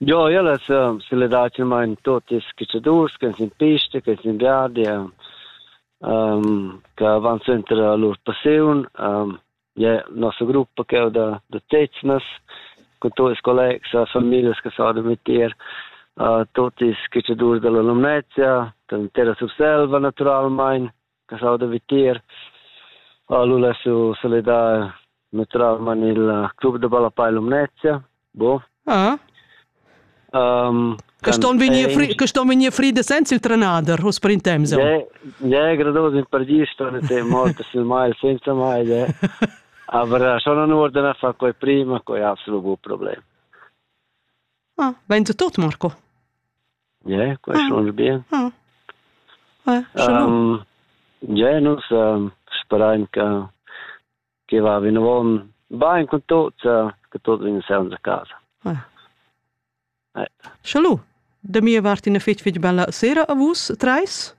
Jo, ellas seledatamain tuottas catschadurs ch'ans in pista, ch'ans in viadi, che van suenter a lur passiun. Ie nossa gruppa ch'eu da da Teznas cun tuot ils collegs e famiglias che s'audan mit tier, tuottas catschadurs da l'Alumnezia, da l'intera Surselva naturalmaing. caschau da vitier ha lu lasu salidar naturalmein il club de ballapei Lumnezia bo ah um, che ston vegnir fri che ston vegnir fride senza il trenader hos per in temps ja ja grados in perdi sto te molto sul mai senza mai ja aber schon an ordena fa quei prima quei absolut bu problem ah, Ventu tot, Marco. Yeah, question mm. bien. Mm. Ouais, um, yeah, nus um, speraim che che va vinavon bain con tot uh, che tot in senza casa. Schalu, de mir wart in a fitch fitch bella sera a vus treis.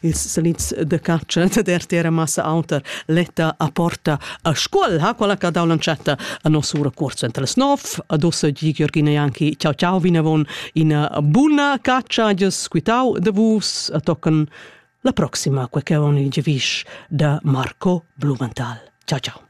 ils salits de cartscha da RTR massa auter letta a porta a scuol ha quella che dau lancetta a nosura corso entre les 9 adossa gi Giorgina Janki ciao ciao vinavon ina buna caccia ges quitau de vus a tocken la proxima queche oni gevish da Marco Blumenthal ciao ciao